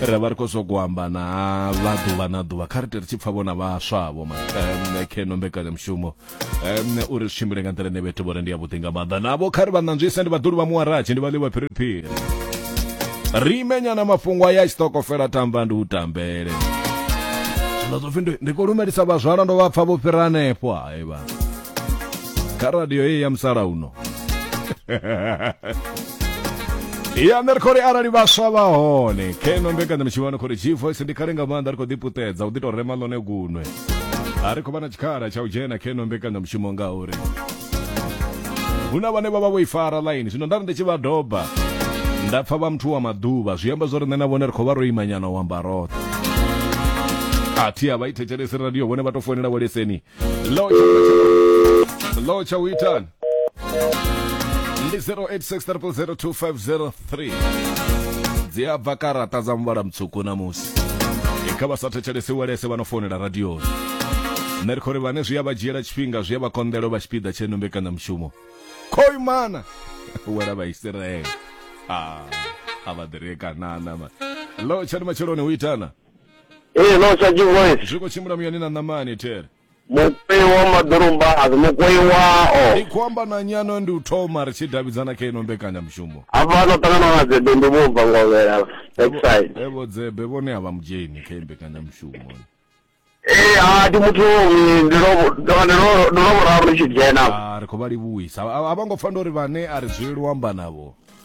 ra vha ri khou zwa kuamba na vha ḓuvha na ḓuvha kha ri ri tshi pfa vhona vhaswavho makheno mbekanyamushumo u ri tshimbile nga nḓila ine vhethu vhore ndi ya vhuḓi nga maanḓa navho kha ri vha ṋanzwise ndi vhaḓuli vha muwaratshi ndi vha ḽiwa phiriphiri ri imenyana mafhungo aya tshitokofela tamba ndi u tambele zwino zwo pfi ndi khou lumelisa vhazwala ndo vha pfa vho fhira hanefho hayi vha kha radio heyi ya musalauno ya nṋe ri khou ri arali vhaswa vha hone keno mbekanyamushumo ni khou ri gvoice ndi khale nga maanḓa ri khou ḓiputedza u ḓi tou rema ḽone gunwe a ri khou vha na tshikhala tsha u dzhena keno mbekanyamushumo ngauri hu na vhane vha vha vho i fara ḽaini zwino nda ri ndi tshi vha doba nda pfa vha muthu wa maḓuvha zwi amba zwo ri nṋe na vhone ri khou vha ro imanyana u amba roṱhe a thi a vha i thetshelesi radio vhone vha tou founela vho leseni Hello, Chakula Chakula. Hello, Chawitan. Ndi 0863002503. Dzi a bva karata dza muvhala mutswuku namusi. E, Kha vha sa thetshelese walese vha no founela radioni. Nṋe ri khou ri vhane zwi a vha dzhiela tshifhinga zwi a vha konḓela u vha tshipiḓa tshe no mbekanyamushumo. Khoi mana! Wela vha Isiraele. Ah, a vha ḓirie kanana. ma. Hello, Tshani Matsheloni, u itana? Ee, no sa chivoice. zwi khou tshimbila muyani na ṋamani there Mukoi wa maḓorombazi, mukoi wao. ndi khou amba na nyano ndi u thoma ri tshi davhidzana kha ino mbekanyamushumo Hafha no ṱangana na dzebe ndi vho bva ngovhela. Backside. evo dzebe vhone a vha mudzheni kha iyi mbekanyamushumo Ee, ha ndi muthu eh, ndi lo ndo ndi lo ndo lo vhuraru ndi tshi dzhena. Ah, ri khou vha livhuwisa a a vha ngo pfa ndo ri vhane a ri dzuleli u amba navho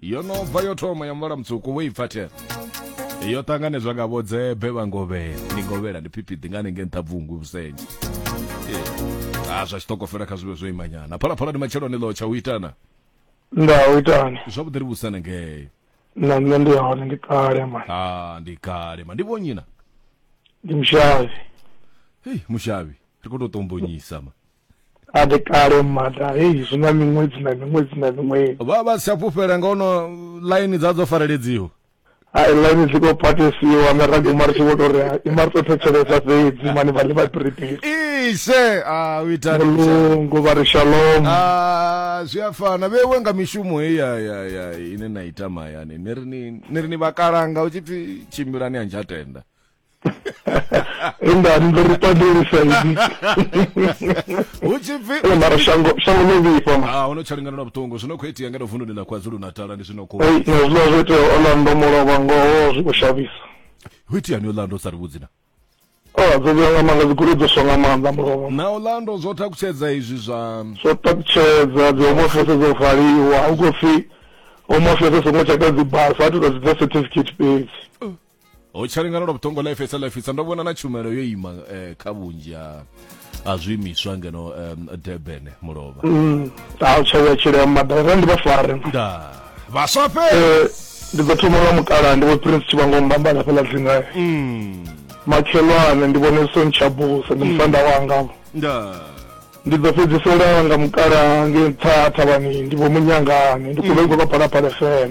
yo no bva yo thoma ya muvhala mutswuku wo i pfa the yo ṱanganedzwa nga vhodzebe vha ngovhela ndi ngovhela ndi phiphiḓi nga hanengei nṱha bvungu vhusenje a zwa tshiṱokofela kha zwivhe zwo imanyana phalaphala ndi matsheloni ḽo tsha u itana nda u itani zwavhuḓi ri vhusana ngei na nṋe ndi hone ndi kale mani a ndi kale ma ndi vhonyina ndi mushavhi hei mushavhi ri khou tou tombonyisa ma A ndi kale mada heyi zwi na miṅwedzi na miṅwedzi na miṅwedzi. Vha vha si tsha fhufhela nga ono ḽaini dza dzo fareledziwa. Hai ḽaini dzi khou phatesiwa nga ra guma ri tshi vho tou ri i mari tou thetshelesa fhedzi mani vha ḽi vha piripiri. Ishe a u itani mulungu vha ri shalom. A zwi a fana vhewe nga mishumo heyi ya ya ya ine na ita mahayani ni ri ni ni ri ni vhakalanga u tshi pfi tshimbilani a ntsha tenda. en dan ndo ri pandeli saidi hu tshi pfi ene mara shango shango ḽo vhifha ma ah ono tsha lingana na vhuṱungu zwino khou itea ngeno vundu ḽa kwazulu natala ndi zwino khou ei na zwiḽa zwo itea orlando mulovha ngoho zwi khou shavhisa hu itea ni orlando sa ri vhudzi na o dzo vhuya nga maanḓa dzigoloi dzo swa nga maanḓa mulovha na orlando zwo takutshedza izwi zwa zwo takutshedza dzi home office dzo valiwa hu khou pfi home office songo tsheka dzi basa a tou tou dzi dza certificate fhedzi ho tshalingana lwa vhuṱongo life sa life sa ndo vhona na tshumelo yo ima eh, kha vhunzhi ha ha zwiimiswa ngeno um, durban mulovha Mm, a u tshavha tshilea maḓala ra ndi vha fare da vhaswa fhe Eh, ndi ḓo thoma nga mukala ndi vho prince tshivango mbambala fheḽa dzingae Mm, makhelwane ndi vhone son tshabusa ndi musanda wanga da ndi ḓo fhedzisela nga mukala nge nṱha thavhani ndi vho munyangane ndi khou vha i khou vha phalaphala fm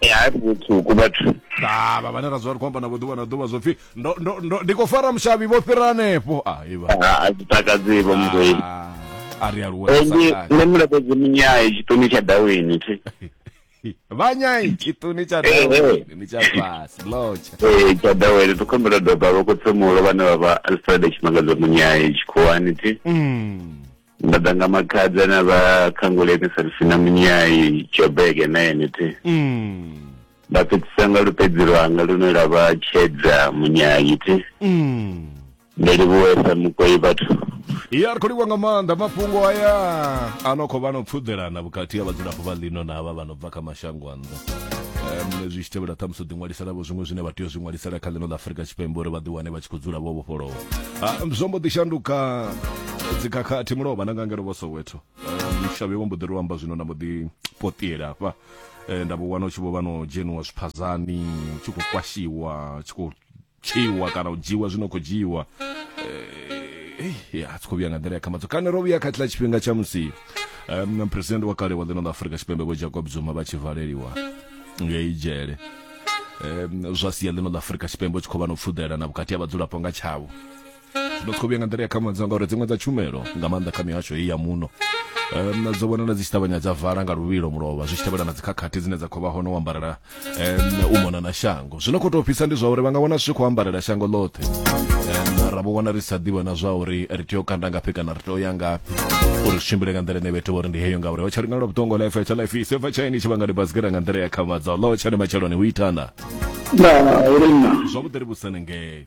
e hai vhutsuku vhathu ha vha vhane ra dzula ri khou amba navho ḓuvha na ḓuvha zwo pfhi ndi khou fara mushavhi vho fhira hanefho a iva a zwi takadzi vho muzwei a ri aluwe nṋe mulapedzi munyai tshiṱuni tsha dawini thi vhanyai tshiṱuni tsha dawini tsha fhasi lotsha ee tsha dawini ri khombela doba vho khotsemulo vhane vha vha alfred tshimangadzo munyai tshikhuwani thi nda ḓa nga makhadza na vha khanguleni sarisina munyai jobege na yenete mm. nda fhedzisa nga lupedzi lwanga lune lwa vha tshedza munyai ti mm. ndi livhuwesa mukoi vhathu ya ri khou livha nga maanḓa mafhungo aya a no khou vha no pfuḓelana vhukati ha vhadzulapo vha ḽino na vha vha no bva kha mashango um, zwi tshi tevhela ṱhamusi u ḓiṅwalisela vho zwiṅwe zwine vha tea u zwi ṅwalisela kha ḽino ḽa afurika tshipembe uri vha ḓiwane vha tshi khou dzula vho vhofholowa um, zwo mbo ḓi shanduka dzikhakhathi mulovha na nga ngelo vho soweto mushavhe wa mbo ḓi ri amba zwino na mbo ḓi potiela hafha nda vho wana u tshi vho vha no dzheniwa zwiphazani tshi khou kwashiwa tshi khou tswiwa kana u dzhiwa zwino khou dzhiwa a tshi khou vhuya nga nḓila ya khamadzo kana ro vhuya kha tshiḽa tshifhinga tsha musi um, president wa kale wa ḽino ḽa afurika tshipembe vho jacob zuma vha tshi valeliwa ngei dzhele um, zwa sia ḽino ḽa afurika tshipembe u tshi khou vha no pfuḓelana vhukati ha vhadzulapo nga tshavho ndo tshi khou vhuya nga nḓila ya khamudzo ngauri dziṅwe dza tshumelo nga maanḓa kha mihasho heyi ya muno um, dzo vhonala dzi tshi ṱavhanya dza vala nga luvhilo mulovha zwi tshi tevhela na dzikhakhathi dzine dza khou vha hone u ambarela um, u mona na shango zwino khou tou fhisa ndi zwa uri vha nga wana zwi tshi khou ambarela shango ḽoṱhe um, ra vho wana ri sa ḓivha na zwa uri ri tea u kanda ngafhi kana ri tea u ya ngafhi uri zwi tshimbile nga nḓila ine vhethu vhori ndi heyo ngauri ho tsha ri ngalo vhuṱongo life tsha life ise bva tshaini tshi vhanga ndi basikela nga nḓila ya khamadza ḽo tsha ni matsheloni hu itana na uri na zwavhuḓi ri vhusane ngei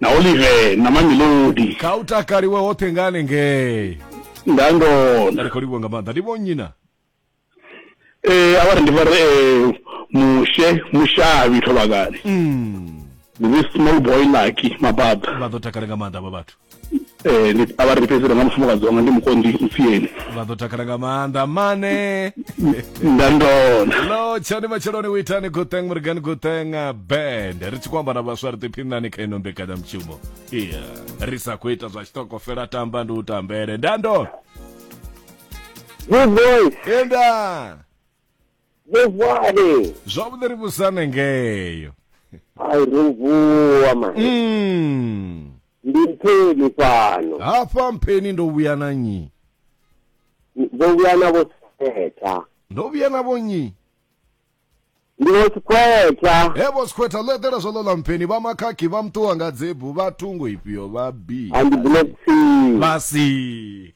na olive na mamelodi kha u takaliwe hoṱhe nga hanengei nda ndo nda ri khou livhuwa nga maanḓa ndi vho nnyi na eh avha ri ndi vha ri eh, mushe mushavhi thovhakani Mm, ndi this small boy lucky mababa vha ḓo takala nga maanḓa avha vhathu Ndi a vha ri fhedziselo nga mufumakadzi wanga ndi mukonḓi mpfiyeni. Vha ḓo takala nga maanḓa mane. Nda ndona. Lo tshani matsheloni u itani good thing murigani good thing uh, band. Ri tshi khou amba na vhaswa ri ḓiphinani kha ino mbekanyamushumo. Iya, ri sa khou ita zwa tshitoko fela tamba ndi u tambele. Nda ndona. Good boy. Enda. Vhuvhale. Zwavhuḓi ri vhusane ngeyo. Ai ri vuwa man. Mm. Ndi mpheni fhano. Hafha mpheni ndo vhuya na nyi. Ndo vhuya na vho setha. Ndo vhuya na vho nyi. Ndi vho sikhwetha. He vho sikhwetha ḽo eḓela zwo ḽo ḽa mpheni vha makhakhi vha muṱuwa nga dzebu vha thungo ifhio vha bi. Andi black sea. Vha si.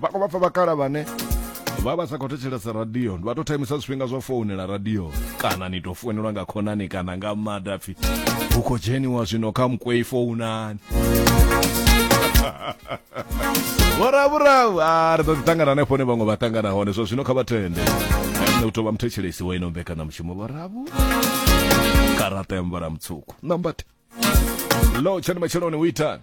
vha khou vha pfa vhakala vhane vha vha sa khou thetshelesa radio vha tou thaimisa zwifhinga zwa founela radio kana ni tou founelwa nga khonani kana nga mada pfi hu khou dzheniwa zwino kha mukwei founani vhoravhuravu a ri ḓo ḓi tangana hanefho ne vhaṅwe vha tangana hone zwa zwino kha vha tende nṋe u tou vha muthetshelesi wa ino mbekanyamushumo vhoravhu karata ya mvhala mutswuku nambate lo tshani matsheloni u itani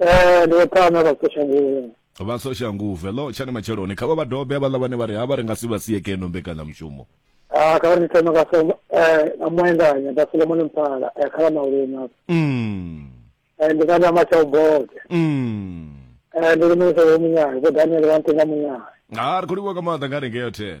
Eh, ndi vho Thama vha Soshanguvhe. vha soshanguve lo tshani matsheloni kha vha vha dobe havhaḽa vhane vha ri ha vha ri nga si vha sie keno mbekanyamushumo Ah, kha vha ndi thoma nga so eh nga muendanya nda Solomon Mpala eh kha vha maulima. Mm, Eh ndi kana matsha uboke. mm. Eh ndi ri muthu wa munyayo, vho Daniel wa ntenga munyayo. ha ri khou livhuwa ka maanḓa nga ri ngeyo there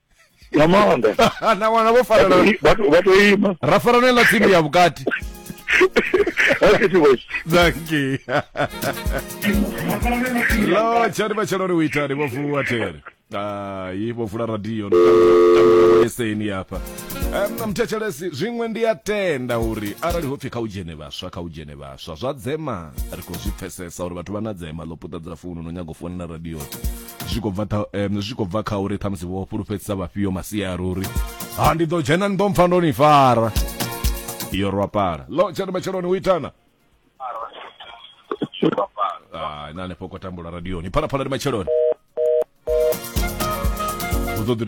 nga maanḓa na wana vho farana vha to- vha to ima ra farana ela tsini ya vhukati Hakethi boys. danki lo tshani matshelo ri u itani vho vuwa tere hai vho vula radio eseni hafha Em, mthetshelesi zwiṅwe ndi a tenda uri arali ho pfhi kha u dzhene vhaswa kha u dzhene vhaswa zwa dzema ri khou zwi pfesesa uri vhathu vha na dzema ḽo puṱedza founu no nyaga u founela radio zwi khou bva zwi khou bva kha uri ṱhamusi vho fhulufhedzisa vhafhio masia a ruri ha ndi ḓo dzhena ni ḓo mpfa ndo ni fara iyo rwapala lo tshena matsheloni u itana na hanefho ko tambula radioni phalaphala ndi matsheloni u ḓo ḓi